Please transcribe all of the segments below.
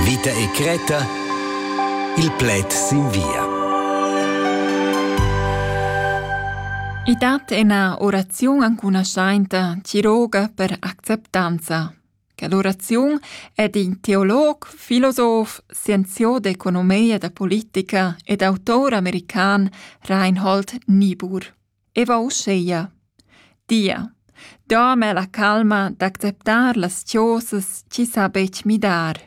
Vita e cretta Il pled sin via. I dat ina oraziun ancunaschainta tiroga per acceptanza. Quell'oraziun è d'in teolog, filosof, scienziò d'economia da politica ed autor american Reinhold Niebuhr. e va uscheia. Dia, dama la calma d'acceptar las chosas chi sa betg midar.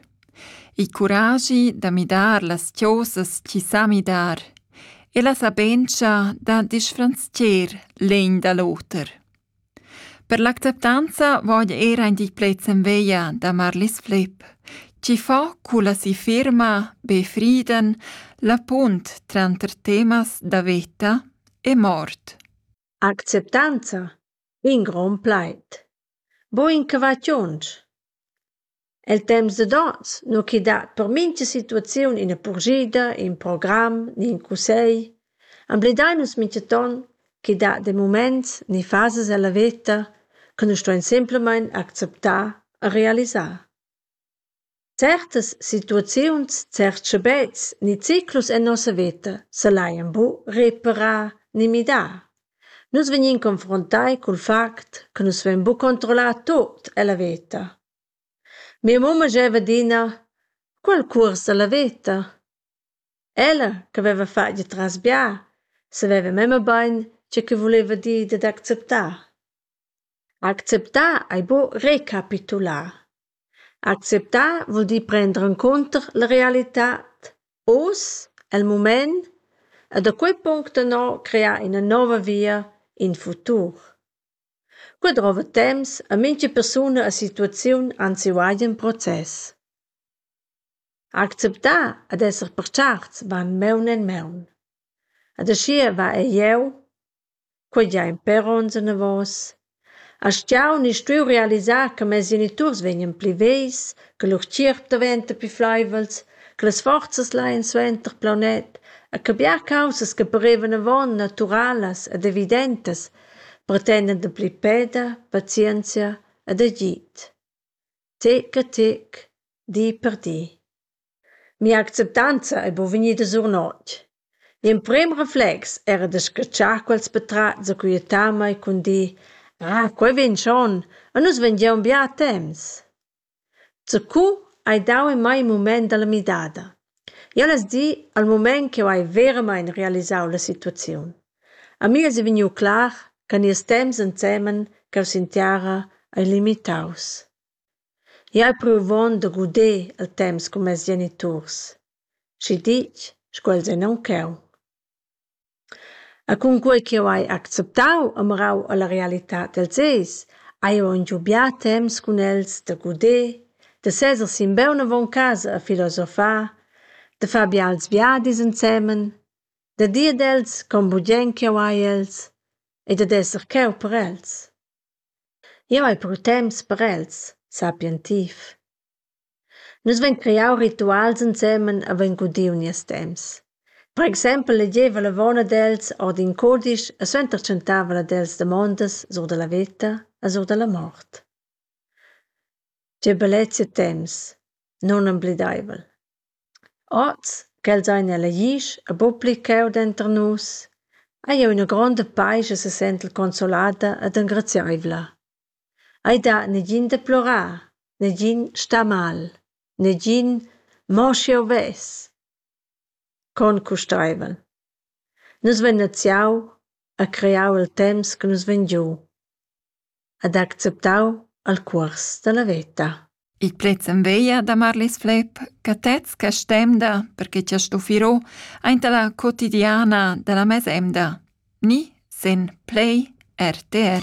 Il curagi da midar las chosas chi sa midar e la sabentscha da disfranzcher l'egn da l'oter. Per l'acceptanza vogl era in di plets en veglia da Marlis Flepp, chi fa culla si firma Be Frieden la punt tranter temas da veta e mort. Acceptanza, in grond plaid. Bo incuvaziuns. El temps dad ons nu chi dat per mincha situaziun üna purschida, ün program ni ün cussegl. Emblidai nus minchaton chi dat de muments ni fasas ella veta chi nu ston simplamaing acceptar e realisar. Certas situaziuns, certs schabets ni ciclus en nossa veta s'al hajan bu reparà ni midà. Nus vegnin confruntai cul fact che nus vein bu controllar tuot ella veta. Mia mumma gieva adina cul cuors alla veta. Ella che veva fatg il transbià saveva memia bein tgei che vuleva dir dad acceptar. Acceptar ei buca recapitular. Acceptar vul dir prender encunter la realitad, oz, el mument e da quei punct ennå crear ina nova via, in futur. Quei drova temps e mintga persuna e situaziun anzi ualti in process. Acceptar ed esser pacharts van maun en maun. Ed aschia va ei jeu, quei gian per onns anavos, aschia ni stuiu realisar che mes geniturs vegnien pli vegls, che lur tgierp daventa pli fleivels, che las forzas laien suenter plaunet e che bia caussas che parevan avon naturalas ed evidentas pretendend dapli peda, pazienzia ed agid. Tec a tec, di per di. Mia acceptanza ei buca vegnida surnotg. L'emprem reflex era da scatschar quels patratgs aquietamein cun dir: Ah, quei vegn schon, e nus vengiam bia temps. Zacu hai dau en mei in mument dalla midada. Jeu less dir al mument ch'jeu hai veramein realisau la situaziun. A mi es vegniu clar che nies temps ensemen ch'jeu sentiara ei limitaus. Jeu hai pruvont da guder il temps cun mes geniturs, schi ditg sco els ein aunc cheu. E cunquei ch'jeu hai acceptau e mirau alla realitad dels eis, hai jeu aunc giu bia temps cun els da guder, da seser simbeun avon casa e filosofar, da far bials viadis ensemen, da dir ad els con bugen ch'jeu hai els e dad esser cheu per els. Jeu hai però temps per els, sappien ti. Nus vein creau rituals ensemen e vein gudiu nies temps. Per exempel legeva l'avon ad els ord in cudisch e suenter tschentava el ad els damondas sur dalla veta e sur dalla mort. Tge bellezia temps! Nunemblideivel. Oz, ch'els ein elegius e buc pli cheu denter nus, hai jeu ina gronda paisch e sesentel consolada ed engrazieivla. Ei dat negin da plorar, negin sta mal, negin mo sch'jeu vess. Con custeivel. Nus vein naziau e creau il temps che nus vein giu ed acceptau il cuors dalla veta. Il plaz en veglia da Marlis Flepp, catez Castemda, perche ti has stufi ro aint la quotidiana da la mesemda, ni sen Play RTR.